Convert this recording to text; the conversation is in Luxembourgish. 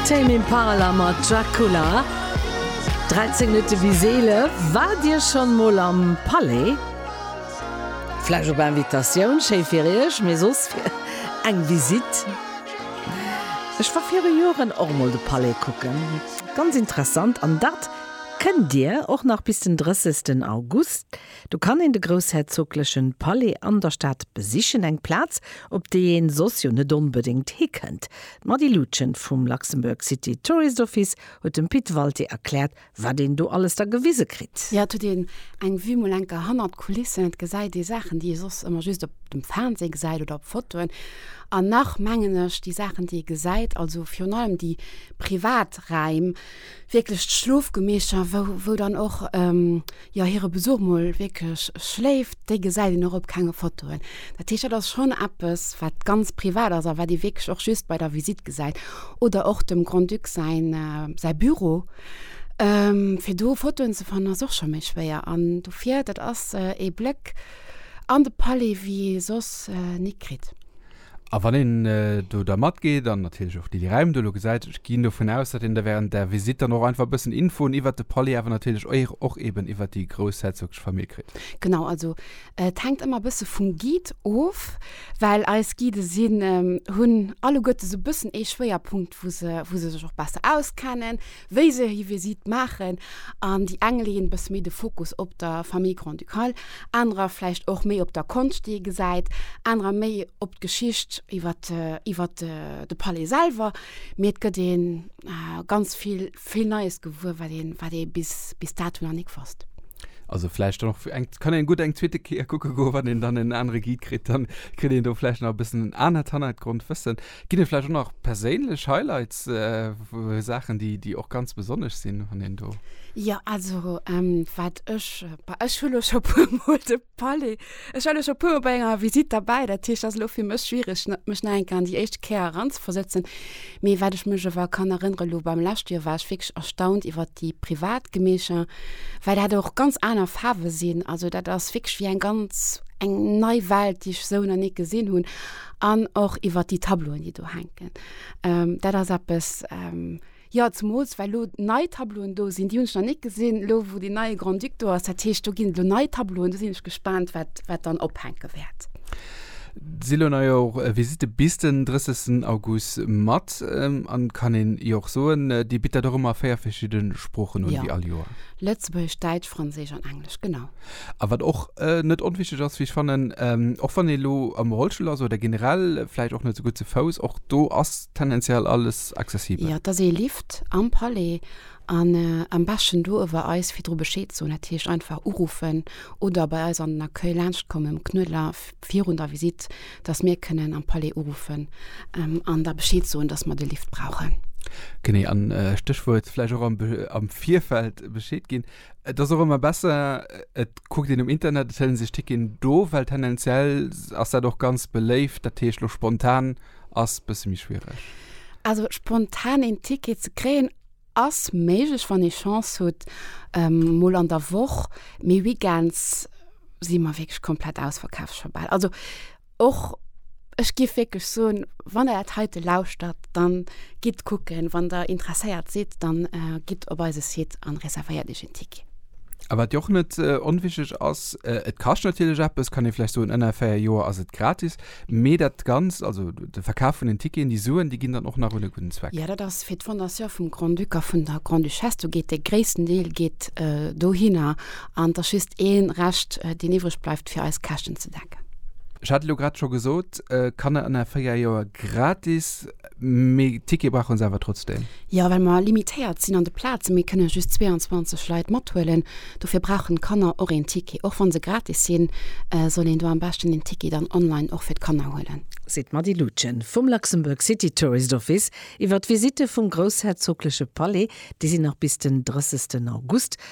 Tame Impala mat Dracula, 13 Minutte bis 11. Waart Dir schonn emol am Palais? Vläch op Invitatioun, schéi fir Iech, mee soss fir eng Visite? Ech war viru Joren och emol de Palais kucken, ganz interessant. An dat kënnt Dir och nach bis den 30 August. Do kann een de groussherzogleche Palais an der Stad besichen, eng Plaz, op déi ee soss jo net onbedéngt hikënnt. D'Mady Lutgen vum Luxembourg City Tourist Office huet dem Pit Walté erkläert, wat een do alles da gewise kritt. Jo, et huet een eng Vue mol enker hannert d'Kulissen. Et gesäit ee Saachen, déi ee soss ëmmer just op dem Fernseh gesäit oder op Fotoen. An nach, mengen ech, déi Saachen, déi ee gesäit, also virun allem déi privat Räim, wierklech d'Schlofgemeescher, wou, wou dann och, jo, hire Besuch mol wierklech schléift, déi gesäit een och op kenge Fotoen. Dat heescht, dat ass schonn eppes, wat ganz privat ass a wat ee wierklech och just bei der Visitt gesäit. Oder och dem Grand-Duc säin, säi Büro. Fir do Fotoen ze fannen, ass och scho méi schwéier. An dofir, dat ass ee Bléck an de Palais, wéi ee soss ni kritt. A wann een do da matgeet, an natierlech och déi, déi Räim do elo gesäit, ech ginn dovun aus, datt een da während där Visitt dann och einfach e bëssen Infoen iwwert de Palais, awer natierlech och eeben iwwert déi groussherzoglesch Famill kritt. Genau, also et hänkt ëmmer e bësse vum Guide of, well eis Guide sinn, hunn alleguertes e bëssen ee Schwéierpunkt, wou se, wou se sech och besser auskennen. wéi se hir Visitt maachen an déi eng leeën e bësse méi de Fokus op der Famille Grand-Ducale, anerer vläicht och méi op der Konscht, déi ee gesäit, anerer méi op d'Geschicht iwwert, iwwert de Palais selwer. Mee et gëtt ee ganz vill, vill Neies gewuer, wat ee, wat ee bis, bis dato nach nik wosst. Also vläicht dann och eng, kann een gutt eng zweete Kéier kucke goen, wann een dann en anere Guide kritt, dann kritt een do vläicht nach e bëssen en anert Hannergrondwëssen. Ginn et vläicht och nach perséinlech Highlights, Saachen, déi och ganz besonnesch sinn, wann een do. Jo, also wat ech, bah, ech hu lo scho puermol de Palais, ech war lo scho puermol bei enger Visitt derbäi, dat heescht, dat ass elo fir mech schwiereg, mech nach eng Kéier an déi éischt Kéier eranzeversëtzen. Mee wat ech mech awer kann erënneren, elo beim leschte Joer war ech wierklech erstaunt iwwert déi privat Gemecher, well dat och ganz aner Faarwe sinn. Also dat ass wierklech wéi eng ganz eng nei Welt, déi ech esou nach ni gesinn hunn. an och iwwer déi Tableauen, déi do hänken. Dat ass eppes, jo, zemools well elo nei Tableauen do sinn, déi hunn ech nach net gesinn, elo wou deen neie Grand-Duc do ass. Dat heescht, do ginn et elo nei Tableauen, do sinn ech gespaant, wat, wat dann ophänke wäert. Si elo nei och Visitte bis den 30 August mat an kann een jo och soen, Dir bitt dat och ëmmer a véier verschidde Sproochen un, wéi all Joer? Lëtzebuergesch, Däitsch, Franséisch an Englesch, genau. A wat och net onwichteg ass, wéi ech fannen, och wann ee lo am Rollstull ass oder generell vläicht och net esou gutt ze Fouss, och do ass tendenziell alles accessibel. Jo, et ass ee Lift am Palais an am beschten do uewer eis virdru Bescheed soen, dat heescht einfach uruffen oder bei eis an den Accueil laanscht kommen, um Knuedler, virun der Visitt, dass mir kënnen am Palais uruffen an da Bescheed soen, dass mer de Lift brauchen. Genee, a Stéchwuert vläicht och am Virfeld Bescheed ginn. Et ass och ëmmer besser, et kuckt een um Internet, et hëllen sech Ticketen do, well tendenziell ass dat och ganz beléift. Dat heescht, elo spontan ass e bësse méi schwiereg. Also spontan een Ticket ze kréien ass méiglech, wann ee Chance hutt, mol an der Woch. Mee Weekends si mer wierklech komplett ausverkaf, scho bal. Also. Och ech géif wierklech soen, wann Der dat heite lauschtert, dann gitt kucken. Wann Der interesséiert sidd, dann gitt op eise Site an reservéiert Iech en Ticket. A wat jo och net onwichtig ass, et kascht natierlech eppes, kann ee vläicht soen. Ënner 4 Joer ass et gratis, mee dat Ganzt, also de Verkaf vun den Ticketen, déi Suen, déi ginn dann och nach un e gudden Zweck. Jo, dat ass fir d'Fondation vum Grand-Duc a vun der Grande-Duchesse. Do geet de gréissten Deel geet dohinner. an et ass just ee Rescht, deen iwwreg bleift, fir eis Käschten ze decken. Ech hat elo grad scho gesot, Kanner ënner 4 Joer gratis, mee Tickete brauche se awer trotzdeem? Jo, well mer limitéiert sinn an de Plazen. Mir kënne just 22 Leit mathuelen. Dofir brauchen d'Kanner och een Ticket. Och wa se gratis sinn, soll een do am beschten een Ticket dann online och fir d'Kanner huelen. Seet d'Mady Lutgen vum Luxembourg City Tourist Office iwwer d'Visitte vum groussherzogleche Palais. Déi sinn nach bis den 30 August